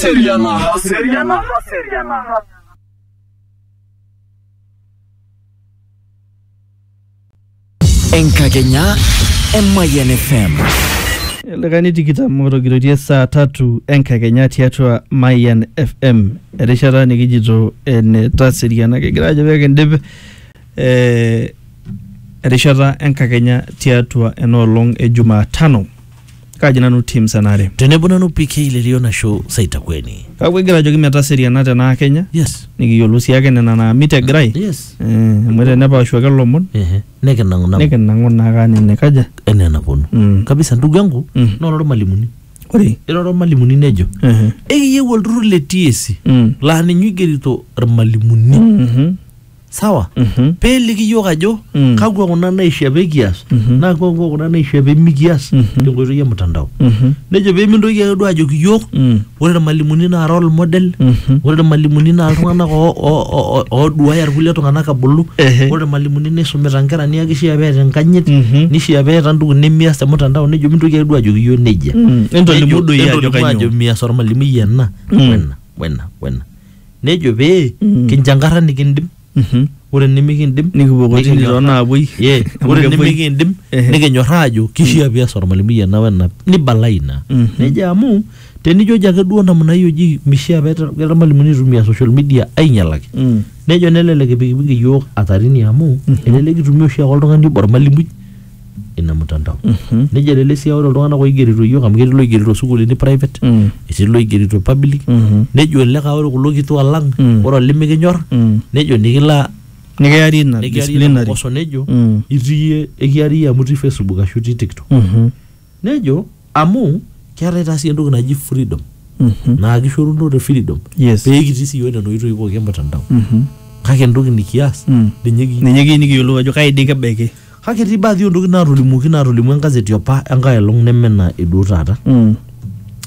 Seriana. Seriana. Seriana. Enkakenya Emayian FM. likae nitikita motogiriotie saa tatu enkakenya tiatua Mayan FM erishata nikijito ene taseriana kigira ajo pee kindip eh, erishata enkakenya tiatua enoolong e Jumatano kaji nanu tim senare tenebo nanu pk lelio nasho saitakweni kake egira ajoki metaseriana tenaa kenya yes nikiyiolou sii ake nena naamit egirai yes Eh, amu tenepaashu ake lomon ehe nekinang'u nang'u nikinang'u naa kaa nene kaja enaa enaponu Mm. kabisa ndugu yangu Mm. nora ormalimuni ore irora ormalimuni nejo ehe, ekiyieu olturrur le TSC Mm. laa ninye oigerito irmalimuni mhm, sawa Mhm. peeliki yiok ajo Mm. kakwa kuna naishia pekias Mhm. naa kakwa kuna naishia pemikias Mhm. tenkoitoi e mtandao Mhm. nejo pemintoki ake duo ajoki yiok Mm. ore irmalimuni naa role model Mhm. ore irmalimuni naa iltung'anak oo- oo- oo- ooduaya irkulie tung'anak abulu Ehe. ore irmalimuni nisumita nkera niaku kishia peeta enkanyit Mhm. nishia peeta ntoki nemias te mtandao nejo mintoki ake duo ajoki yiok nejia Mm. Entolimu Nejo- doi ajo entolimu kanyioo. mias ormalimui ena Mm. wena wena wena nejo pee Mm. kinjankarra nikindim Mhm. ore nimikindim Nikipuo kotini nikinyorraa- toonaapuoi. Ye, Amu ore kepuoi. nimikindim Ehe. nikinyorraa ajo kishaa pias ormalimui ena wena nibala ina Mhm. nejo amu tenijoji ake duo namna hiyo ji mishaa peeta keeta irmalimuni itumia social media ainyalaki Mm. nejo nelelek ipikipiki iyiook atarini amu Mhm. elelek itumia oshiake oltung'ani obo ormalimui ina mtandao Mhm. nejia lele sia ore iltung'anak oigerito iyiook amu ketii loigerito sukuulini private Mm. etii loigerito public Mhm. nejo olikae ore kulo kituak lang Mm. ore olimikinyor Mm. nejo nikila nikiari ina nikiari ina disciplinary kokoso nejo Mm. itii iyie ekiari iyie amu itii facebook ashu itii tiktok Mhm. nejo Amu keetae taa sii entoki naji freedom Mhm. naa kishoruno te freedom Yes. pee kitii sii iyiook nena oitoi pooki e mtandao Mhm. kake entoki nikias Mm. ninye kiyieu. Ninye kiyieu nikiyiolou ajo kai dii kebaiki. Kake etii baadhi oo ntokitin naatolimuoki naatolimuo enkazeti opa enkae olong neme ina eduo taata. Mm.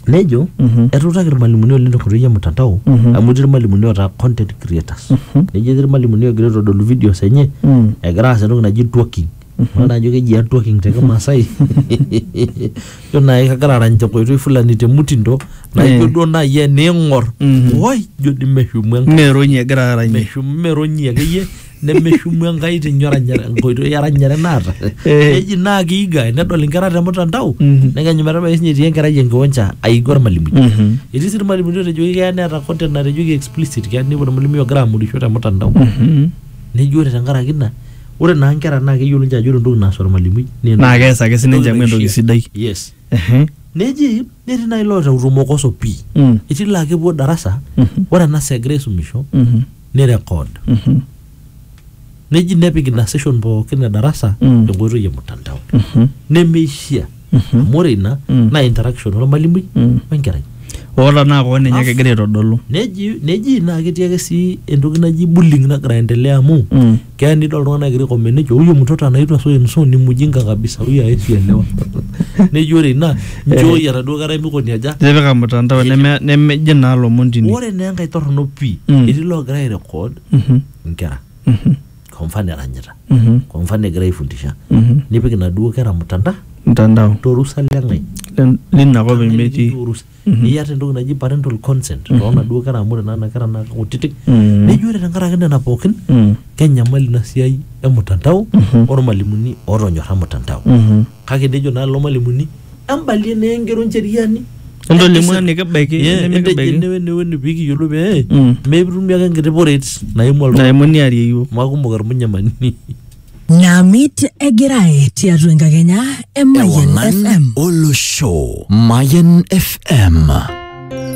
Nejo Mhm. etuutaki irmalimuni oleng tenkoitoi e mtandao Mhm. amu etii irmalimuni ootaa content creators. Mhm. Nejo etii irmalimuni oogira aitodolu videos enye Mm. egira aas entoki naji twerking Ore najo keji ear twerking te Kimaasai. Ijo naai kagira arany tenkoitoi fulani te mutindo naijo duo naai eniing'or woi ijo dii meshumu Enkai. Meronyi egira aranyie. Meshumu meronyi akeyie nemeshumu Enkai tinye oranyare enkoitoi eranyare naata. Eh. Neji naa kiiga nedol inkera te mtandao Mhm. nekenyu metabaiki siinye etii enkerai enkiwanja aiga ormalimui. Mhm. Etii sii irmalimuni ootejoki keya neeta content natejoki explicit keya ninepu ormalimui ogira amorisho te mtandao. Mhm. Neji ore tenkaraki ina ore naa nkera naa keyiolo ninche ajo ore entoki naas ormalimui naa entoki- Naa kees ake sininche amu entoki naishia. sidai. yes Ehe. neji netii naaji loota utumokoso pii Mm. etii laa kepuo darasa Mhm. ore ena saa egira aisumisho Mhm. ni record Mhm. neji nepik ina session pookin e darasa Mm. enkoitoi e mtandao Mhm. nemeishia amu ore ina Mm. naa interaction ormalimui Mm. wenkerai oota naa koon ninye Afu. kegira aitodolu neji neji naa ketii ake sii entoki naji bullying nagira aendelea amu Mm. keya nidol iltung'anak egira aikomment nejo huyo mtoto anaitwa so and so ni mjinga kabisa huyo hawezi elewa neji ore ina njooi enaduo kerai mikoni aja tipika mtandao neme- nemeji naa lomon tine ore naa enkae torrono pii Mm. etii loogira airecord Mhm. inkera Mhm. kwa mfano eranyita Mhm. kwa mfano egira aifundisha Mhm. nipik inaduo kera mtandao mtandao torusa leng'ai Len- lina kop emetii Torusa. niata entoki naji parental consent toonaduo kera amu ore nana kera naa kutitik Mm. neji ore tenkaraki nena pookin Mm. kenyamali ina siai emutandao ormalimuni otonyorra mutandao Mhm. Kake nejo naa lelo malimuni, Embalie naa engero Ncheriani. Entolimu enikibaiki Ye, entejo enimikibaiki. ene wene wene pee kiyiolou pee Mm. mikitumie ake enkiti poreet naimu oltung'ani. Naimu niarie iyiook. Amu aikumok ilmunyamani. Namit egirae tiatua enkakenya e Mayian Ewangan FM. Olosho Mayan FM.